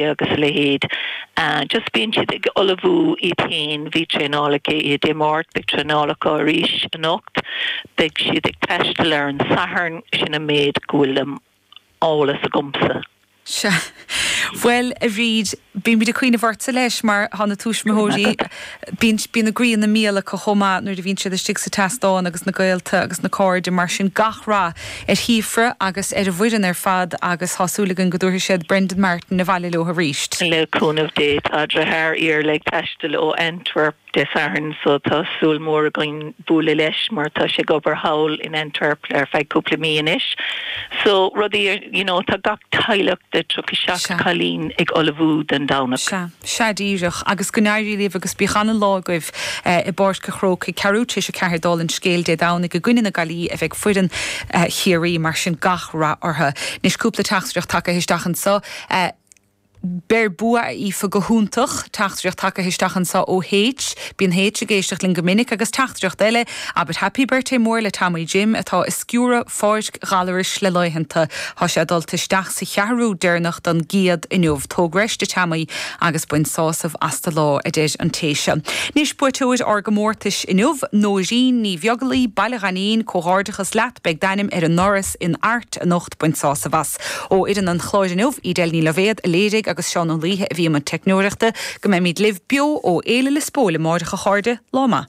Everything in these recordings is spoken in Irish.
agus a leithéid just bíonn siad ag ullmhú iad féin, bhí traenáil acu Dé Máirt, beidh traenáil acu arís anocht, beidh siad ag taisteal ar an Satharn, sin an méid go bhfuil de eolas agamsa. Sea. Bhuel, a Bhríd, bímid ag cuimhneamh ortsa leis mar tá na tuismitheoirí, bíonn a gcroí ina mbial acu chomh maith nuair a bhíonn siad istigh sa tseastán agus na gaolta agus na cairde mar sin gach rath ar Shíofra agus ar an bhfoireann ar fad agus tá súil againn go dtabharfaidh siad Brendan Martin abhaile leo arís. Le cúnamh Dé tá dritheár Iarla ag taisteal ó Antwerp Dé Sathairn so tá súil mór againn bualadh leis mar tá sé ag obair thall in Antwerp ar feadh cúpla mí anois so rudaí you know tá gach teaghlach de 37 cailín ag ullmhú don Domhnach. Sea díreach, agus go n-éirí libh agus bíodh ana-lá agaibh i bPáirc a' Chrócaigh. Ceathrú tar éis a ceathair dála an scéil Dé Domhnaigh i gcoinne na Gaillimhe a bheidh foireann Chiarraí, mar sin gach rath orthu. Anois cúpla teachtaireacht tagtha isteach anseo. Beir bua a Aoife, go hiontach. Teachtaireacht tagtha isteach anseo ó H, Bíonn H ag éisteacht linn go minic, agus teachtaireacht eile, Abair Happy Birthday mór le Tommy Jim atá i stiúradh Páirc Ghallarus le laethanta. Tá sé ag dul isteach sa cheathrú deireanach don gcéad inniu. Tóg breis de Tommy agus bain sásamh as do lá, a deir an téacs. Anois buaiteoir ár gcomórtais inniu, Nóirín Ní Bheaglaoi, Baile Ghainín, Comhghairdeachas leat, beidh d'ainm ar an ndoras in Art anocht, bain sásamh as. Ó fhoireann an Chláir inniu, Edel Ní Loibhéad a léirigh agus Seán Ó Laoithe a bhí i mbun teicneoireachta. Go mbeimid libh beo ó Fhéile Lios Póil amáireach a chairde, lá maith.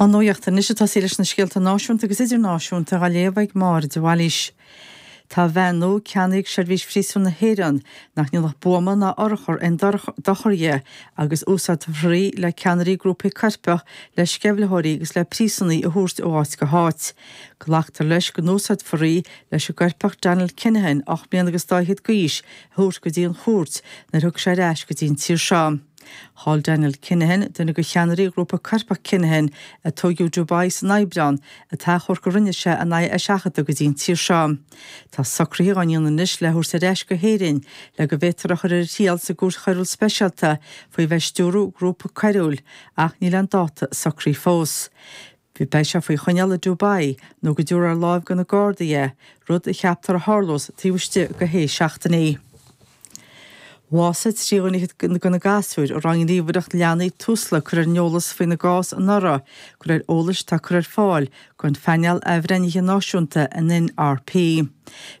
An nuacht anois atá sí leis na scéalta náisiúnta agus idirnáisiúnta á léamh ag Máire de Bhailís. Tá veain nua ceannaithe ag Seirbhís Phríosúin na hÉireann nach ndéanfadh buama ná urchar aon dochar dhi agus úsáidfear í le ceannairí grúpaí coirpeach, le sceimhlitheoirí agus le príosúnaigh a thabhairt ó áit go háit. Glactar leis go n-úsáidfear í leis an gcoirpeach Daniel Kinahan, ocht mbliana agus dá fhichead d'aois, a thabhairt go dtí an chúirt nuair a thug sé ar ais go dtí an tír seo. Chaill Daniel Kinahan, duine de cheannairí ghrúpa coirpeach Kinahan a tóigeadh i Dubai san Aibreán, an t-achomharc a rinne sé in aghaidh a sheachadta go dtí an tír seo. Tá socruithe á ndéanamh anois lena thabhairt ar ais go hÉirinn le go bhféadfar a chur ar a thriail sa gCúirt Choiriúil Speisialta faoi bheith stiúradh grúpa coiriúil, ach níl aon dáta socraithe fós. Bhí Beidh sé faoi choinneáil i Dubai nó go dtabharfar ar láimh go na Gardaí é, rud a cheaptar a tharlós taobh istigh de shé seachtainí. Bhásaigh trí dhuine dhéag de na gasúir a raibh an Ghníomhaireacht Leanaí Tusla curtha ar an eolas faoina gcás anuraidh go réir eolais atá curtha ar fáil gon phainéal athbhreithnithe náisiúnta, an NRP.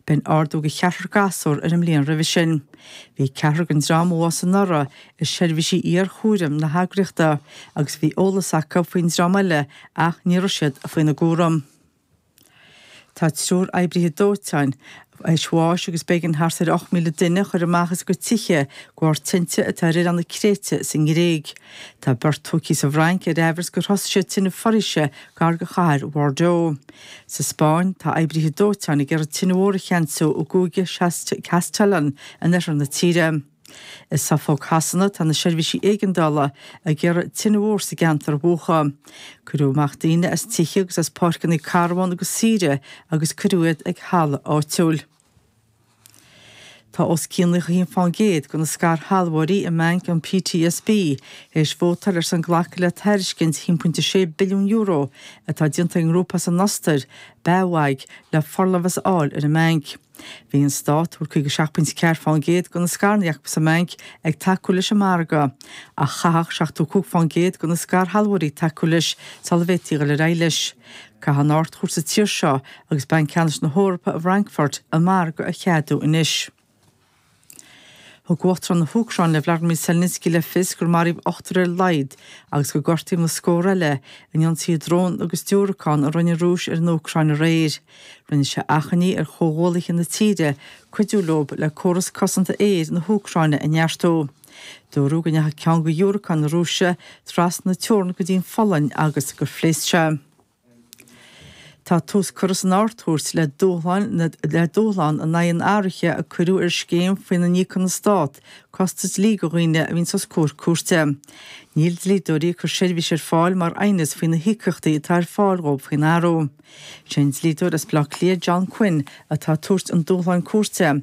B'in ardú go cheathrar gasúr ar an mbliain roimhe sin. Bhí ceathrar den dream a bhásaigh anuraidh i seirbhísí iarchúraim na heagraíochta agus bhí eolas acu faoin dream eile ach ní raibh siad faoina gcúram. Tá triúr oibrithe dóiteáin tar éis bháis agus b'éigean thart ar 8,000 duine a chur amach as a gcuid tithe de bharr tinte atá ar oileán na Créite sa nGréig. Tá beirt tógtha sa bhFrainc ar aimhreas gur thosaigh siad tine foraoise gar de chathair Bhordeaux. Sa Spáinn, tá oibrithe dóiteáin ag iarraidh tine mhór a cheansú i gcúige Castellón in oirthear na tíre. I Suffolk Shasana tá na seirbhísí éigeandála ag iarraidh tine mhór sa gceantar a mhúchadh. Cuireadh amach daoine as tithe agus as páirceanna carbhán agus saoire agus cuireadh iad ag halla áitiúil. Tá os cionn 1% de na scairshealbhóirí i mBanc an PTSB tar éis vótáil ar son glacadh le tairiscint €1.6 billiún atá déanta ag an ngrúpa as an Ostair, BAWAG, le forlámhas a fháil ar an mbanc. Bhí an Stát, a bhfuil 57 pointe ceathair faoin gcéad de na scaranna acu sa mbanc, ag tacú leis an margadh, ach chaithfeadh 75 faoin gcéad de na scairshealbhóirí tacú leis sula bhféadfaí dul ar aghaidh leis. Caithfidh an Ardchúirt sa tír seo, agus Banc Ceannais na hEorpa i bhFrankfurt, an margadh a cheadú anois. Thug uachtarán na hÚcráine Volodymyr Zelensky le fios gur maraíodh ochtar ar a laghad agus gur gortaíodh na scórtha eile in ionsaí drón agus diúracán a rinne an Rúis ar an Úcráin aréir. Rinne sé achainí ar chomhghuaillithe na tíre cuidiú leo le córas cosanta aeir na hÚcráine a neartú. Dúradh go ndeachaigh ceann de dhiúracáin na Rúise trasna na teorann go dtí an Pholainn agus gur phléasc sé. Tá tús curtha san Ardchúirt le dúshláin le dúshlán in aghaidh an athraithe a cuireadh ar scéim faoina n-íocann an Stát costas dlí do dhaoine a bhíonns os comhair cúirte. Níl dlíodóirí ag cur seirbhís ar fáil mar aighneas faoi na híocaíochtaí atá ar fáil dhóibh faoin athrú. Sé an dlíodóir as Bleá Cliath John Quinn atá ag tabhairt an dúshláin cúirte.